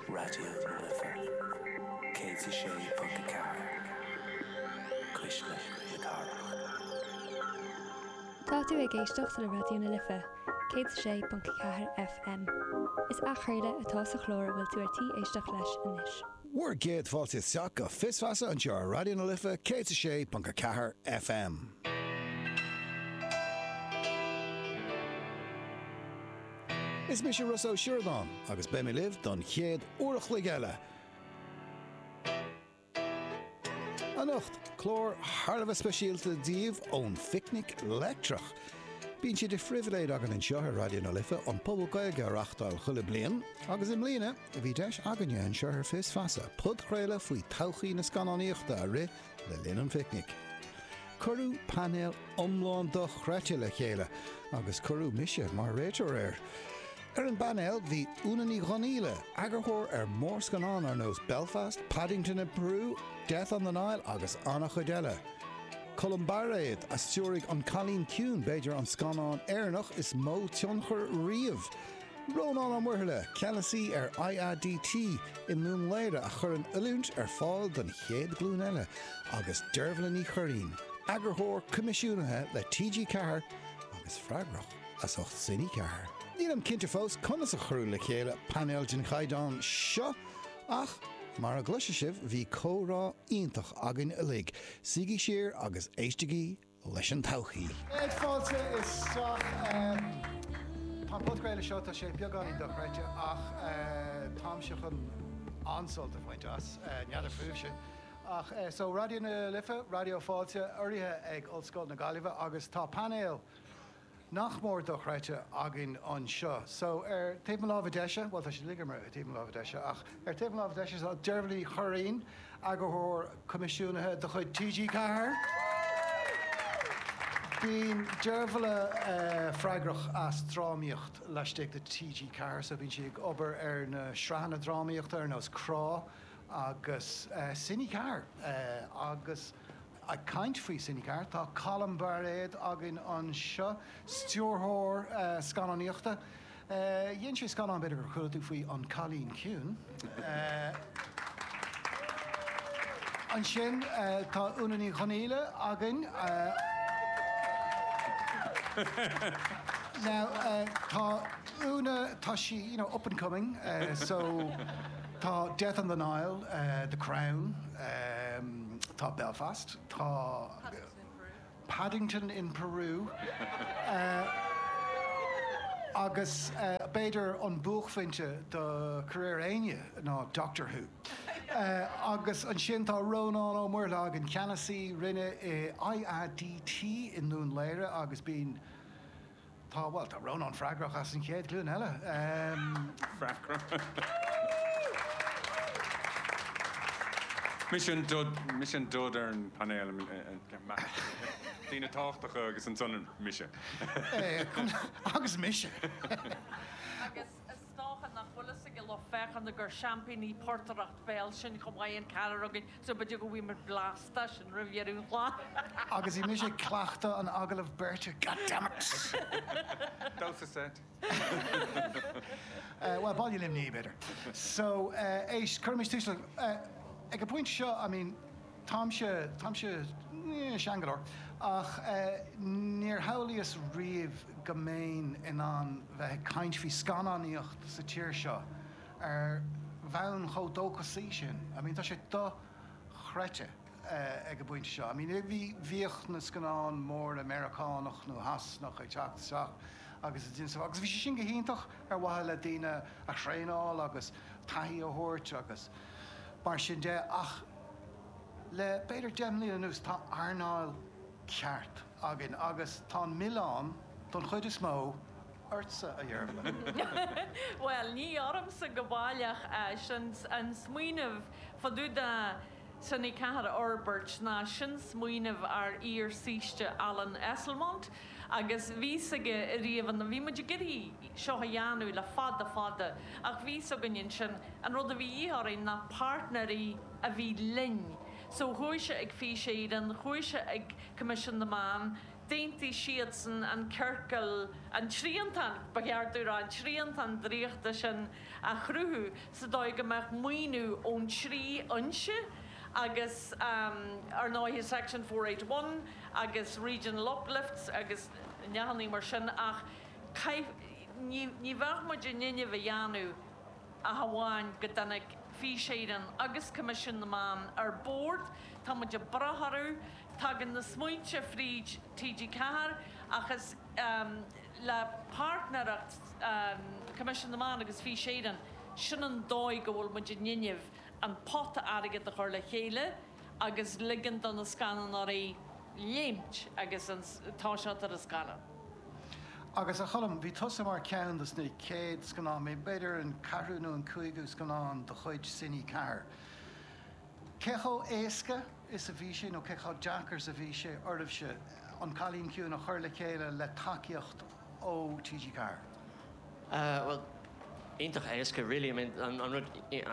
Raidió na Life 106.4 Cuisle na Cathrach. Tá tú ag éisteacht le Raidió na Life 106.4 FM. Is athchraoladh atá sa chlár a bhfuil tú ar tí éisteacht leis anois. Bhur gcéad fáilte isteach go Fios Feasa anseo ar Raidió na Life 106.4 FM. Is mise Rossa Ó Sioradáin agus beidh mé libh don chéad uair a chloig eile anocht. Clár thar a bheith speisialta daoibh ón Phicnic Leictreach. Bíonn sé de phribhléid againn anseo ar Raidió na Life an Puball Gaeilge a reáchtáil chuile bliain agus i mbliana bhí deis againne anseo ar Fios Feasa podchraoladh faoi todhchaí na scannánaíochta a rith le linn an phicnic. Cuireadh painéal iomlán dochreidte le chéile agus cuireadh mise mar réitheoir air. Ar an bpainéal bhí Úna Ní Dhonghaíle, eagarthóir ar mhórscannán ar nós Belfast, Paddington in Peru, Death on the Nile agus an-chuid eile. Colm Bairéad a stiúraigh An Cailín Ciúin, b'fhéidir an scannán Éireannach is mó tionchar riamh. Rónán Ó Muirthile, ceannasaí ar IADT i nDún Laoghaire a chuireann oiliúint ar fáil don chéad ghlúin eile agus Deirbhle Ní Churraoin, Eagarthóir Coimisiúnaithe le TG4 agus freagrach as ucht Cine4. Nílim cinnte fós conas a cuireadh le chéile painéal den chaighdeán seo ach mar a gcloisfidh sibh bhí comhrá iontach againn uilig, suígí siar agus éistigí! leis an todhchaí. Céad fáilte isteach. Tá an podchraoladh seo, tá sé beagáinín dochreidte ach táimse chun an-sult a bhaint as, n'fheadar fúibhse. Ach so, Raidió na Life, Raidió Fáilte, urraithe ag Ollscoil na Gaillimhe agus tá painéal, nach mór dochreidte againn anseo. So, ar taobh mo láimhe deise, bhuel, tá siad uilig ar taobh mo láimhe deise, ach ar taobh mo láimhe deise tá Deirbhle Ní Churraoin, eagarthóir coimisiúnaithe de chuid TG4. Bíonn Deirbhle freagrach as drámaíocht laistigh de TG4, so bíonn sí ag obair ar na sraitheanna drámaíochta ar nós Crá agus Cine4 agus. Ag caint faoi Cine4, tá Colm Bairéad againn anseo, stiúrthóir scannánaíochta. Dhein sé scannán, b'fhéidir gur chuala tú faoi, An Cailín Ciúin. Ansin tá Úna Ní Dhonghaíle againn. Now, tá Úna, tá sí, you know, up and coming, so tá Death on the Nile, The Crown, Tá Belfast, tá Paddington in Peru agus b'fhéidir an buaicphointe do career éinne ná Doctor Who. Agus ansin tá Rónán Ó Muirthile againn, ceannasaí Roinne IADT i nDún Laoghaire agus bíonn Tá, bhuel, tá Rónán freagrach as an chéad ghlúin eile. Mise an dud ar an bpainéal, daoine tábhachtacha agus ansan mise. Agus mise. Agus Is dócha nach bhfuil fhios ag an lucht féachana gur seaimpíní portaireacht bhéil sinn chomh maith, an ceathrar againn, so b'fhéidir go bhfuimid blasta as sin roimh dheireadh an chláir! Agus bhí mise ag cleachtadh an agallaimh beirte, goddammit! Damhsa seit. Bhuel, Baile Luimní, b'fhéidir. So, éist, cuirimis tús le, ag an bpointe seo, I mean, Táimse, táimse, eh, sean go leor, ach eh, níor shamhlaíos riamh go mbeinn in ann bheith ag caint faoi scannánaíocht sa tír seo ar bhonn chomh dóchasaí sin, I mean tá sé do-chreidte eh, ag an bpointe seo, I mean eh, bhí, bhíodh na scannáin móra Meiriceánach nó Sasanach ag teacht isteach agus, agus bhí sé sin go hiontach ar mhaithe le daoine a thraenáil agus taithí a thabhairt agus mar sin de, ach le b'fhéidir deich mbliana anuas tá earnáil cheart againn agus tá an milleán, don chuid is mó, ortsa, a Dheirbhle. Bhuel, ní ormsa go baileach an smaoineamh fá dtaobh de Cine4 a fhorbairt ná sin smaoineamh ár iar-shaoiste Alan Esslemont, Agus bhí sé ariamh ann, bhí muid ag iarraidh seo a dhéanamh le fada fada ach bhí's againn ansin, an rud a bhí de dhíth orainn ná páirtnéirí a bhí linn. So chuaigh sé chuig Fís Éireann, chuaigh sé chuig Coimisiún na Meán, d'aontaigh siadsan an ciorcal, an triantán ba cheart a rá, an triantán draíochta sin a chruthú sa dóigh go mbeadh maoiniú ón trí fhoinse agus ar ndóigh Section four eight one, agus region uplifts agus nithe mar sin ach chaith, ní, ní bheadh muid in innimh é a dhéanamh ach amháin go dtáinig Fís Éireann agus Coimisiún na Meán ar bord, tá muid ag brath orthu, tagann na smaointe fríd TG4 ach is, em, le páirtnéireacht, em, Coimisiún na Meán agus Fís Éireann, sin an dóigh go bhfuil muid in innimh an pota airgid a chur le chéile. agus ligeann dó na scannánóirí léimt agus tosacht ar an scannán. Agus, a Choilm, bhí tusa mar ceann dos na chéad scannáin, b'fhéidir an ceathrú nó an cúigiú scannán de chuid Cine 4. Cé chomh éasca is a bhí sé, nó cé chomh deacair is a bhí sé oraibhse An Cailín Ciúin a chur le chéile le tacaíocht ó TG4? Bhuel, iontach éasca really, I mean an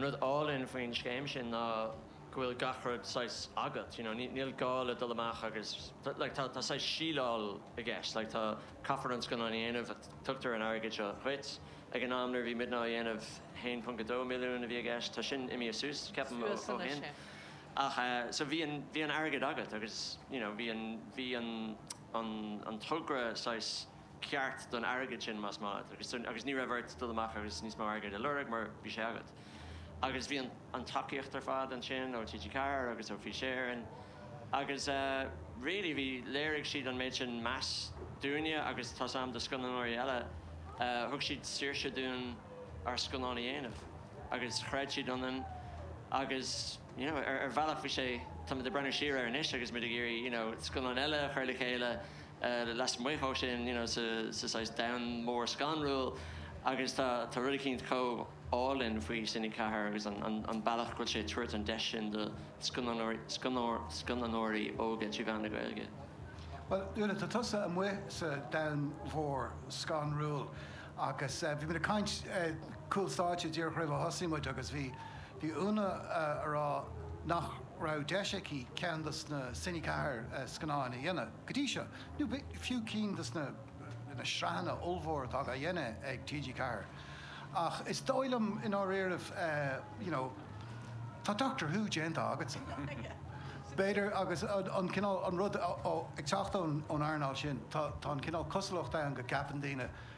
rud álainn faoin scéim sin ná go bhfuil gach rud saghas agat, you know, níl gá leat dul amach agus, like, tá saghas síleáil i gceist, like, tá, caithfear an scannán a dhéanamh ach tugtar an airgead seo dhuit. Ag an am nuair a bhí muidne á dhéanamh, 1.2 milliún a bhí i gceist, tá sin imithe suas, ceapaim, ó shin. Suas anois, yeah. Ach eh, so bhí an, bhí an airgead agat agus, you know, bhí an, bhí an, an, an togra saghas. ceart don airgead sin más maith leat agus agus ní raibh ort dul amach agus níos mó airgid a lorg mar bhí sé agat agus bhí an tacaíocht ar fad ansin ó TG4 agus ó Fís Éireann agus really bhí léirigh siad an méid sin measa dúinne agus tá's a'm do scannánóirí eile thug siad saoirse dúinn ár scannán a dhéanamh agus chreid siad ionainn agus you know ar bhealach bhí sé táim ag breathnú siar air anois agus muid ag iarraidh you know scannáin eile a chur le chéile lasmuigh ó sin, you know, sa saghas domhan mhór scanrúil agus tá rud eicínt chomh álainn faoi Cine 4 agus an bealach go bhfuil sé ag tabhairt an deis sin do scannánóirí óga trí mheán na Gaeilge. Bhuel, Úna, tá tusa amuigh sa domhan mhór scanrúil agus bhí muid ag caint cúl stáitse díreach roimh a thosaigh muid agus bhí Úna a rá nach raibh deis aici ceann dos na Cine 4 scannáin a dhéanamh. Go dtí seo, nó fiú cinn dos na na sraitheanna ollmhóra atá dhá dhéanamh ag TG Ceathair, ach is dóigh liom i ndáiríribh you know, tá Doctor Who déanta agatsa, b'fhéidir agus an cineál, an rud ag teacht ón earnáil sin, tá an cineál cosúlacht ann go gceapann daoine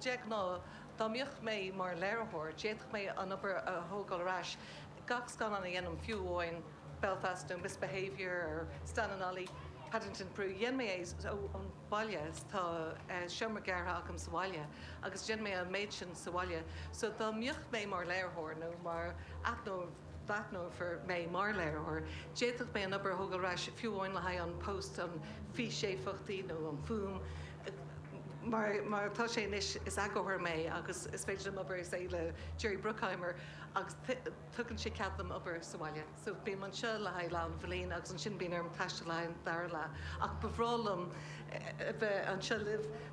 De ghnáth, dá mbíodh mé mar léiritheoir, d'fhéadfadh mé an obair a thógáil ar ais, gach scannán a dhéanaim, fiú amháin Belfast nó Misbehaviour or Stan and Ollie, Paddington Peru, dhein mé é ón bhaile, tá seomra gearrtha agam sa bhaile, agus dhein mé an méid sin sa bhaile. So dá mbíodh mé mar léiritheoir nó mar aithneoir, dá n-aithneofar mé mar léiritheoir, d'fhéadfadh mé an obair a thógáil ar ais fiú amháin le haghaidh an post, an físéifeachtaí nó an fuaim. Mar atá sé anois, is eagarthóir mé agus is féidir liom obair, say, le Jerry Bruckheimer agus tugann sé cead dom obair sa bhaile. So, bím anseo le haghaidh leath an bhliain agus ansin bíonn orm taisteal le haghaidh an dara leath. Ach ba bhreá liom a bheith anseo libh.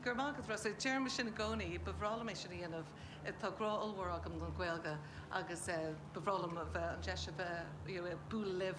Go raibh maith agat, Rossa. Deirim é sin i gcónaí, ba bhreá liom é sin a dhéanamh. Tá grá ollmhór agam don Ghaeilge agus ba bhreá liom a bheith, an deis a bheith, you know, ag bualadh libh.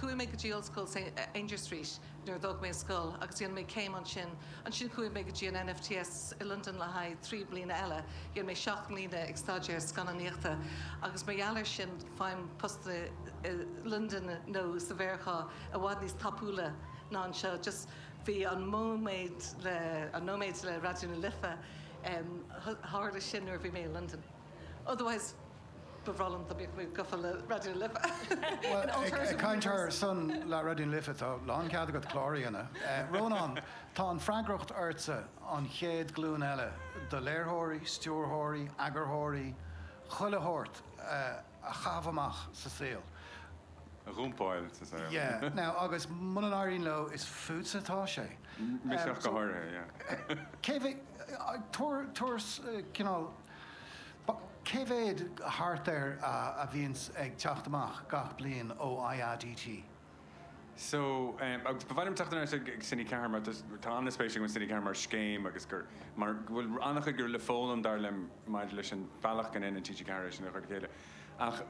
Chuaigh mé go dtí ollscoil ar Aungier Street nuair a d'fhág mé an scoil agus dhéan mé céim ansin. Ansin chuaigh mé go dtí an NFTS i Londain le haghaidh trí mbliana eile. Dhéan mé seacht mbliana ag staidéar scannánaíochta agus mar gheall air sin faighim postanna i Londain nó sa Mheiriceá i bhfad níos tapúla ná anseo. Just. Bhí an nóiméad le, an nóiméid le Raidió na Life, tharla sin nuair a bhí mé i Londain. Otherwise, ba bhreá liom dá mbeadh mé gafa le Raidió na Life, in alternative universe. Bhuel, ag caint ar son le Raidió na Life, tá lán cead agat cláir a dhéanamh. Rónán, tá an freagracht ortsa an chéad glúin eile do léiritheoirí, stiúrthóirí, eagarthóirí, chuile shórt, a. a chaitheamh amach sa saol. a dhumpáil sa saol. Yeah, now, agus muna n-éiríonn leo, is fútsa atá sé. Mise go háirithe, yeah. Tabhair cineál, cé mhéad thart ar a bhíonns ag teacht amach gach bliain ó IADT? So, em, agus ba mhaith liom teacht anuas ag, ag Cine 4 mar tá, tá an-spéis agam i Cine 4 mar scéim agus gur, mar go bhfuil an-chuid gur féidir le foghlaim dar liom maidir leis an bhealach go ndéanann TG4 é sin a chur le chéile ach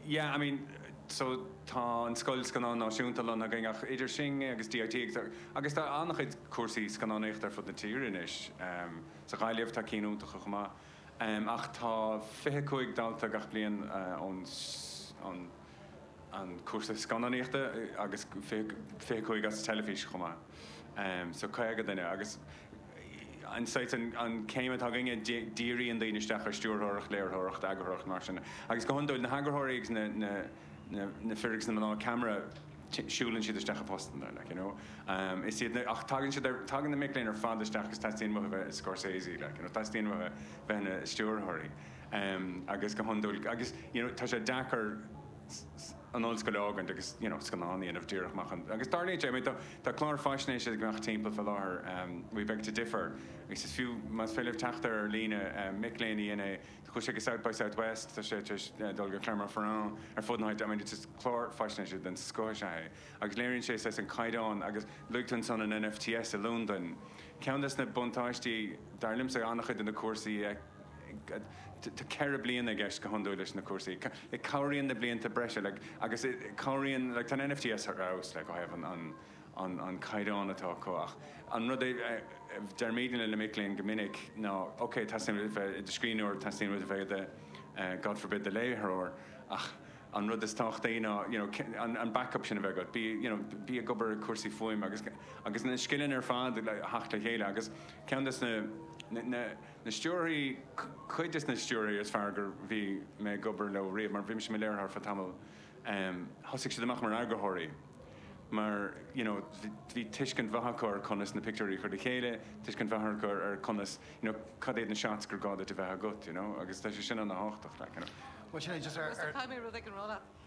yeah, I mean, so tá an Scoil Scannán Náisiúnta lonnaithe againn ach idir sin agus DIT agus tá, agus tá an-chuid cúrsaí scannánaíochta ar fud na tíre anois, em, sa Ghaillimh tá cinn iontacha chomh maith, em, ach tá fiche cúig dalta gach bliain, eh, ón, ón. an cúrsa scannánaíochta agus fiche cúig as teilifís chomh maith, so caoga duine. Agus an saghas, an céim atá againne, díríonn daoine isteach ar stiúrthóireacht, léiritheoireacht, eagarthóireacht, mar sin. Agus go hiondúil, na heagarthóirí agus na fir agus na mná ceamara, siúlann siad isteach i bpostanna, like, you know. Is iad na, ach tagann siad ar, tagann na mic léinn ar fad isteach agus teastaíonn uathu bheith i Scorsese, like, you know, teastaíonn uathu bheith ina stiúrthóirí. agus go hiondúil agus you know tá sé deacair an ollscoil a fhágaint agus you know scannán a dhéanamh díreach amach ann, agus dar le Jay, I mean tá clár faisnéise ag imeacht timpeall faoi láthair we beg to differ agus is fiú más féidir libh teacht air ar líne, mic léinn a dhein é, chuaigh sé go South by Southwest, tá sé tar éis dul go Clermont-Ferrand, ar fud na háite, I mean it's just clár faisnéise den scoth is ea é agus léiríonn sé saghas an caighdeán agus luaigh tú ansan an NFTS i Londain, ceann des na buntáistí dar liomsa, an-chuid de na cúrsaí a Tá ceithre bliana i gceist go hiondúil leis na cúrsaí. Cabhraíonn na blianta breise agus cabhraíonn, tá an NFTS thar fheabhas ó thaobh an caighdeán atá acu ach an rud é, deirimid le na mic léinn go minic ná ok, teastaíonn uait a bheith i do scríbhneoir, teastaíonn uait a bheith i do, God forbid, do léitheoir ach an rud is tábhachtaí ná you know an backup sin a bheith agat, bí you know bí ag obair ar chúrsaí fuaime agus na scileanna ar fad a theacht le chéile agus ceann de na na stiúrthoirí, cuid des na stiúrthoirí is fearr go raibh mé ag obair leo riamh, mar bhí mise i mo léiritheoir ar feadh tamall, em, thosaigh siad amach mar eagarthóirí mar, you know, bhí tuiscint mhaith acu ar conas na pictiúirí a chur le chéile, tuiscint mhaith acu ar conas, you know, cad iad na shots gur gá duit a bheith agat, you know, agus tá sé sin ana thábhachtach, like, you know. Bhuel, sin é, just ar, ar. Tá mé rud éigin a rá leat.